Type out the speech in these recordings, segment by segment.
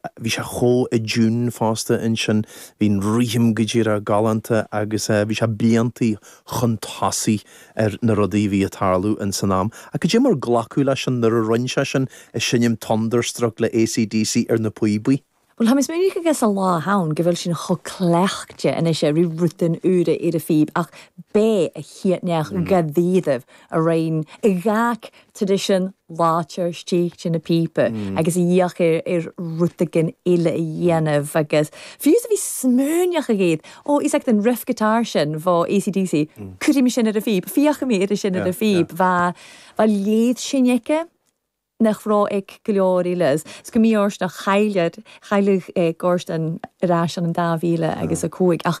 Bhí sé chomh i dtiún fosta ansin, bhí an rithim go díreach galánta agus bhí sé bliantaí chun tosaigh ar na rudaí a bhí a' tarlú ins an am. Ach goidé mar a glacadh leis an uair a rinn sé sin ag seinm Thunderstruck le AC/DC ar na píobaí. Bhuel tá mé smaoineachadh sa lá a th'ann go bhfuil sinn chomh cleachtaithe anois a ri rudan úra ar a' phíb ach b'é a' chiad neach ga dtaobh a rinn gach traidisiún láidir istigh de na píoba agus a dh'fhéach ar rud éigin eile a dhéanamh agus fiú is a bheith smaoineachadh, ó is ait an riff guitar sin bho AC/DC, cuirfidh mé sin ar an phíb, féachfaidh mé ri sin ar an phíb, bhá bhá léirsinn aige nach raibh ag go leor eile. Is is go mí-fhortanach chailleadh chailleadh Gordon ar ais ann an 2005 ach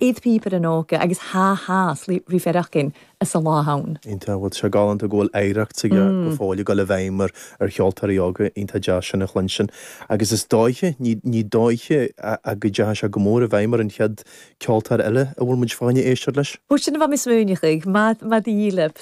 ith píobairean óga agus thá thá sin ri faireachdainn sa lá a th'ann. Iontach, bhuel, sé galánta go bhfuil oidhreacht s'aige go fóill ag dul i bhfeidhm ar cheoltóirí óga, iontach deas sin a chluinstin. Agus is dóiche, ní ní dóiche ach go ndeachaidh sé go mór i bhfeidhm ar an chéad ceoltóir eile a bhfuil muid fá choinne éisteacht leis. Ó sin a bha mi smaoineachadh, mar mar dhíleab.